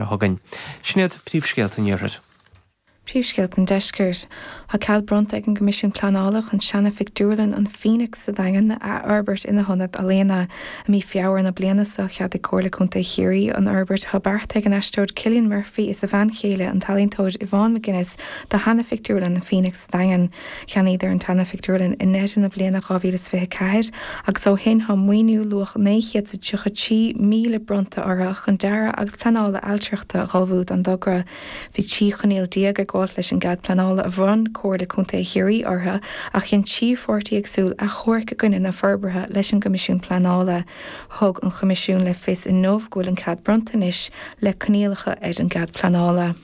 a thugainn. Sin iad príomhscéalta an Iarthair. Príomhscéalta an Deiscirt. Thá cead bronnta ag an gCoimisiún Pleanála chun seana-phictiúrlann an Phoenix sa Daingean a athfhorbairt ina hionad ealaíona. I mí Feabhra na bliana so cheadaigh Comhairle Contae Chiarraí an fhorbairt atá beartaithe ag an aisteoir Cillian Murphy is a bhean chéile an t-ealaíontóir Yvonne McGuinness do sheana-phictiúrlann an Phoenix. Daingean. Cheannaíodar an tseana-phictiúrlann i ndeireadh na bliana 2024 agus ó shin tá maoiniú luach naoi chéad is a tríocha trí míle bronnta orthu chun dearadh agus pleanála ailtireachta a ullmhú don dtogra. Bhí trí choinníoll déag ag gabháilt leis an gcead pleanála a bhronn Comhairle Contae Chiarraí orthu ach dhein trí pháirtí éagsúil achomhairc i gcoinne na forbartha leis an gCoimisiún Pleanála. Thug an Choimisiún le fios inniu go bhfuil an cead bronnta anois le coinníollacha ar an gcead pleanála.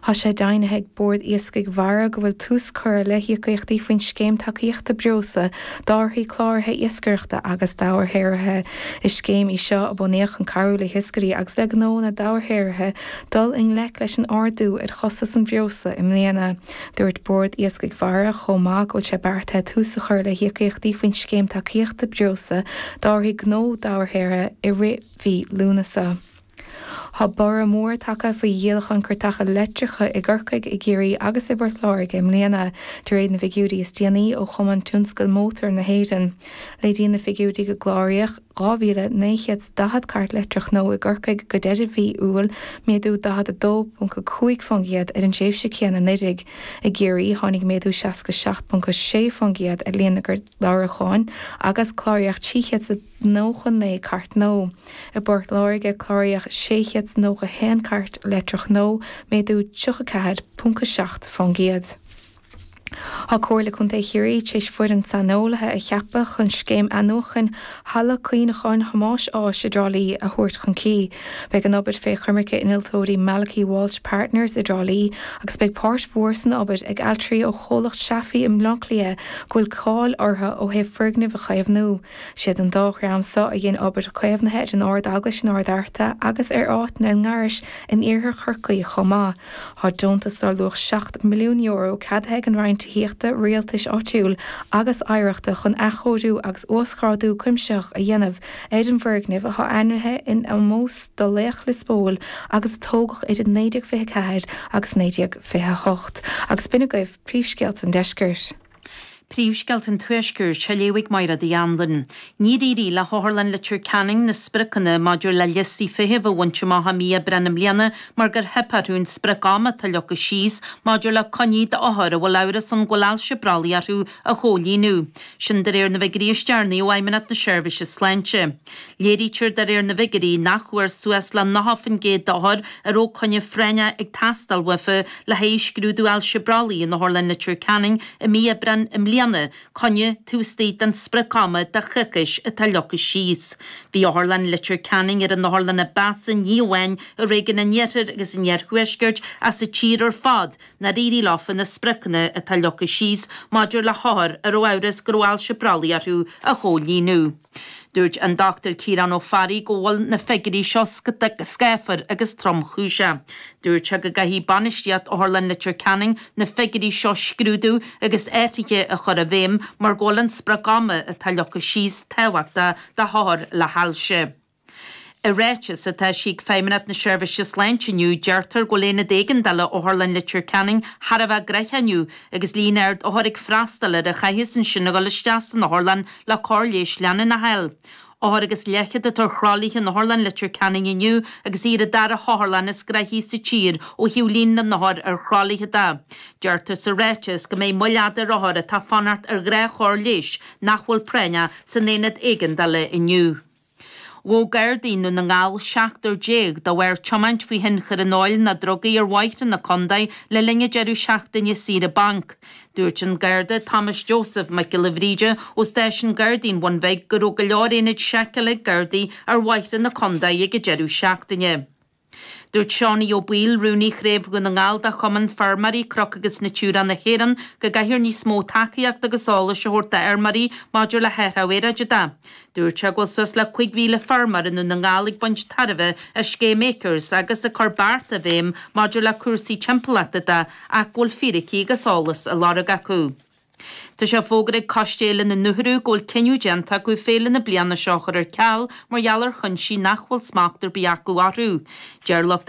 Thá sé deimhnithe ag Bord Iascaigh Mhara go bhfuil tús curtha le híocaíochtaí faoin Scéim Tacaíochta Breosla d'árthaí cláraithe iascaireachta agus dobharshaothraithe. Is scéim í seo a bunaíodh chun cabhrú le hiascairí agus le gnónna dobharshaothraithe dul i ngleic leis an ardú ar chostas an bhreosla i mbliana. Dúirt Bord Iascaigh Mhara chomh maith go bhfuil sé beartaithe tús a chur le híocaíochtaí faoin Scéim Tacaíochta Breosla d'árthaí gnó dobharshaothraithe i rith mhí Lúnasa. Thá borradh mór tagtha faoi dhíolachán cairteacha leictreacha i gCorcaigh, i gCiarraí agus i bPort Láirge i mbliana, de réir na bhfigiúirí is déanaí ó Chumann Tionscail Mótair na hÉireann. Léiríonn na figiúirí gur cláraíodh 2,940 cairt leictreach nua i gCorcaigh go deireadh mhí Iúil, méadú 42.5% ar an tréimhse céanna anuraidh. I gCiarraí, tháinig méadú 67.6% ar líon na gclárúcháin agus cláraíodh 300. 99 cairt nua. I bPort Láirge cláraíodh 691 cairt leictreach nua, méadú 34.7 fán gcéad. Thá Comhairle Contae Chiarraí tar éis foireann saineolaithe a cheapadh chun scéim athnuachain Halla Cuimhneacháin Thomáis Ághas i dTrá Lí a thabhairt chun críche. Beidh an obair fé choimirce innealtóirí Malachy Walsh Partners i dTrá Lí agus beidh páirt mhór san obair ag ailtirí ó chomhlacht Shaffrey i mBleácliath go bhfuil cáil orthu ó thaobh foirgnimh a chaomhnú Siad an dá dhream so a dhein obair caomhnaithe ar an Ardeaglais in Ard Fhearta agus ar áiteanna i nGarinis in Iarthar Chorcaí chomh maith. Thá deontas dar luach €7 milliún ceadaithe ag an Roinn Tithíochta, Rialtais Áitiúil agus Oidhreachta chun athchóiriú agus uasghrádú cuimsitheach a dhéanamh ar an bhfoirgneamh atá ainmnithe in omós do laoch Lios Póil agus a tógadh idir 1924 agus 1928. Agus b'in agaibh príomhscéalta an Deiscirt. Príomhscéalta an Tuaiscirt á léamh ag Máire D. Anluain. Níor éirigh le hOtharlann Leitir Ceanainn na spriocanna maidir le liostaí feithimh a bhaint amach i mí Aibreáin i mbliana mar gur theip orthu an sprioc ama atá leagtha síos maidir le coinní d'othair a bhfuil amhras ann go bhfuil ailse brollaigh orthu a chomhlíonadh. Sin de réir na bhfigiúirí is deireanaí ó Fheidhmeannacht na Seirbhíse Sláinte. Léirítear de réir na bhfigiuirí nach bhfuair suas le 90% d'othair a raibh coinne phráinneach ag teastáil uathu le haghaidh scrúdú ailse brollaigh in Otharlann Leitir Ceanainn i mí Aibreán i mbliana, coinne taobh istigh den sprioc-ama de choicís atá leagtha síos. Bhí Otharlann Leitir Ceanainn ar an otharlann ba mheasa ní amháin i réigiún an Iarthair agus an Iarthuaiscirt ach sa tír ar fad nár éirigh leofa na spriocanna atá leagtha síos maidir le hothair a raibh amhras go raibh ailse brollaigh orthu a chomhlíonadh. Dúirt an Dr Ciarán Ó Fearraigh go bhfuil na figiúirí seo scáfar agus tromchúiseach. Dúirt sé go gcaithfidh bainistíocht Otharlann Leitir Ceanainn na figiúirí seo a scrúdú agus athruithe a chur i bhfeidhm mar go bhfuil an sprioc ama atá leagtha síos tábhachtach do hothair le hailse. I ráiteas atá eisithe ag Feidhmeannacht na Seirbhíse Sláinte inniu, deirtear go bhfuil Aonad Éigeandála Otharlann Leitir Ceanainn thar a bheith gnoitheach inniu agus líon ard othar ag freastáil air a chaithfeas ansin a dhul isteach san otharlann le cóir leighis leanúnach a fháil. Othar agus leathchéad atá ar thralaithe in Otharlann Leitir Ceanainn inniu agus í ar an dara hotharlann is gnoithí sa tír ó thaobh líon na n-othar ar thralaithe de. Deirtear sa ráiteas go mbeidh moill fhada ar othair atá ag fanacht ar ghnáthchóir leighis nach bhfuil práinneach san Aonad Éigeandála inniu. Ghabh Gardaí i nDún na nGall seachtar déag de bharr tiomáint faoi thionchar an óil nó drugaí ar bhóithre na Condae le linn an deireadh seachtaine saoire bainc. Dúirt an Garda Thomas Joseph Mac Giolla Bhríde ó Stáisiún Gardaí an Bhun Bhig go raibh go leor ionaid seiceála ag Gardaí ar bhóithre na Condae ag an deireadh seachtaine. Dúirt Seánaí Ó Baoill, Rúnaí Chraobh Dhún na nGall de Chumann Feirmeoirí Cnoc agus Natura na hÉireann, go gcaithfear níos mó tacaíochta agus eolais a thabhairt d'fheirmeoirí maidir le hathrú aeráide de. Dúirt sé go bhfuil suas le cúig mhíle feirmeoir i nDún na nGall ag baint tairbhe as scéim Acres agus ag cur bearta i bhfeidhm maidir le cúrsaí timpeallachta de ach go bhfuil fíricí agus eolas á lorg acu. Tá sé fógartha ag Coiste Fhéile na nUrthu go bhfuil cinneadh déanta acu féile na bliana seo a chur ar ceal mar gheall ar chúinsí nach bhfuil smacht ar bith acu orthu. Deir lucht.